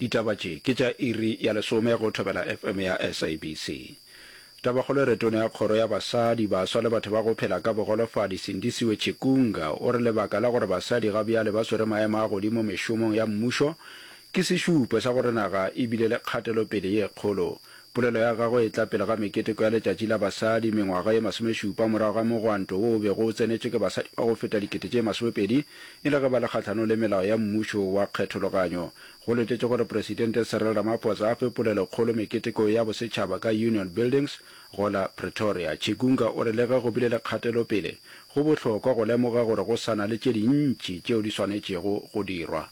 Ditaba tše ke tša iri ya lesome go Thobela FM ya SABC. Tabakgolo e re Tona ya Kgoro ya Basadi, Baswa le Batho ba go Phela ka Bogolofadi Sindisiwe Chikunga o re lebaka la gore basadi ga bjale ba swere maemo a godimo mešomong ya mmušo ke sešupo sa gore naga e bile le kgatelopele ye kgolo Polelo ya gagwe e tla pele ga meketeko ya Letšatši la Basadi, mengwaga ye masomešupa morago ga mogwanto wo o bego o tsenetšwe ke basadi ba go feta dikete tše masomepedi e le ge ba le kgahlanong le melao ya mmušo wa kgethologanyo. Go letetšwe gore Presidente Cyril Ramaphosa a fe polelokgolo meketekong ya bosetšhaba ka Union Buildings go la Pretoria. Chigunga o re le ge go bile le kgatelopele, go bohlokwa go lemoga gore go sa na le tše dintši tšeo di swanetšego go dirwa.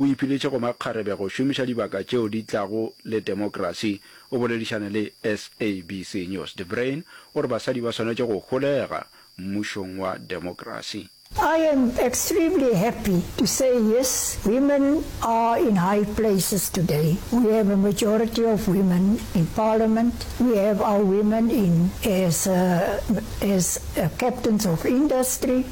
O ipiletše go makgarebe go šomiša dibaka tšeo di tlago le temokrasi. O boledišane le SABC News. De Bruin o re basadi ba swanetše go holega mmušong wa demokrasi. I am extremely happy to say yes, women are in high places today. We have a majority of women in parliament, we have our women in as as captains of industry.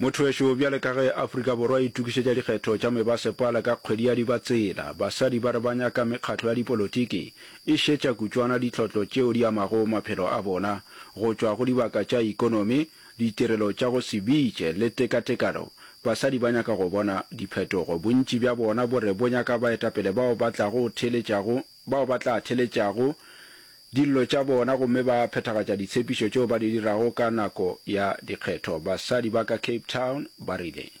Mothoweso bjale ka ge Afrika Borwa e itukišetša dikgetho tša mebasepala ka kgwedi ya Dibatsela, basadi ba re ba nyaka mekgatlo ya dipolotiki e šetša kutšwana ditlhotlo tšeo di amago maphelo a bona go tšwa go dibaka tša ikonomi ditirelo tša go se bitše le tekatekano, basadi ba nyaka go bona diphetogo. Bontši bja bona bo re bo nyaka baetapele bao ba tlago theeletšago, bao ba tla theeletšago dillo tša bona gomme ba phethagatša ditshepišo tšeo ba di dirago ka nako ya dikgetho, basadi ba ka Cape Town ba rile.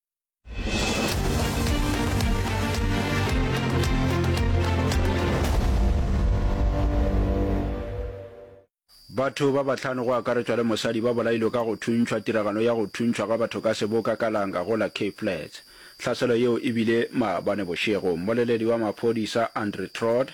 batho ba bahlano go akaretšwa le mosadi ba bolailwe ka go thuntšhwa tiragalo ya go thuntšhwa ga batho ka seboka ka langa go la cape flats tlhaselo yeo e bile maabane bošego mmoleledi wa maphodisa andre trot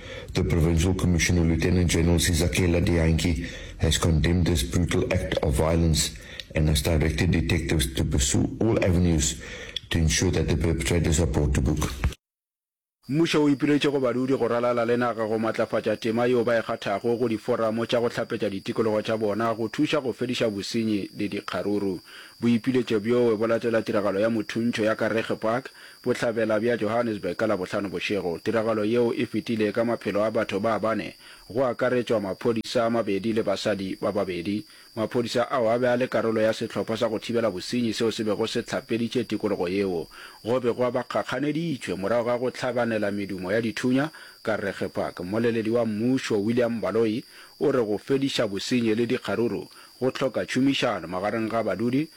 The Provincial Commissioner Lieutenant General Sizakela Dianki has condemned this brutal act of violence and has directed detectives to pursue all avenues to ensure that the perpetrators are brought to book. Mmušo o ipiletše go badudi go ralala le naga go matlafatša tema yeo ba e kgathago go diforamo tša go hlapetša ditikologo tša bona go thuša go fediša bosenyi le dikgaruru. Boipiletšo bjoe bo latela tiragalo ya mothuntšho ya Kareege Park Bohlabela bja Johannesburg ka Labohlano bošego. Tiragalo yeo e fetile ka maphelo a batho ba bane, go akaretšwa maphodisa a mabedi le basadi ba babedi. Maphodisa ao a be a le karolo ya sehlopha sa go thibela bosenyi seo se bego se hlapeditše tikologo yeo go begwa ba kgakganeditšwe morago ga go hlabanela medumo ya dithunya ka Regge Park. Mmoleledi wa mmušo, William Baloyi, o re go fediša bosenyi le dikgaruru go hloka tšhomišano magareng ga badudi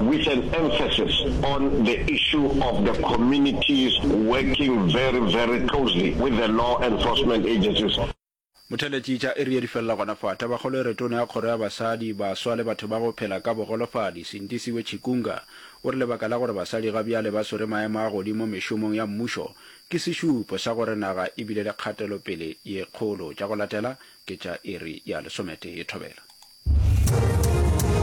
with an emphasis on the issue of the communities working very very closely with the law enforcement agencies. Motheletšitša e rile di felela gona fa. Tabakgolo e re Tona ya Kgoro ya Basadi, Baswa le Batho ba go Phela ka Bogolofadi, Sindisiwe Chikunga, o re lebaka la gore basadi ga bjale ba swere maemo a godimo mešomong ya mmušo ke sešupo sa gore naga e bile le kgatelopele ye kgolo. Tša go latela ke tša iri ya lesometee thobela.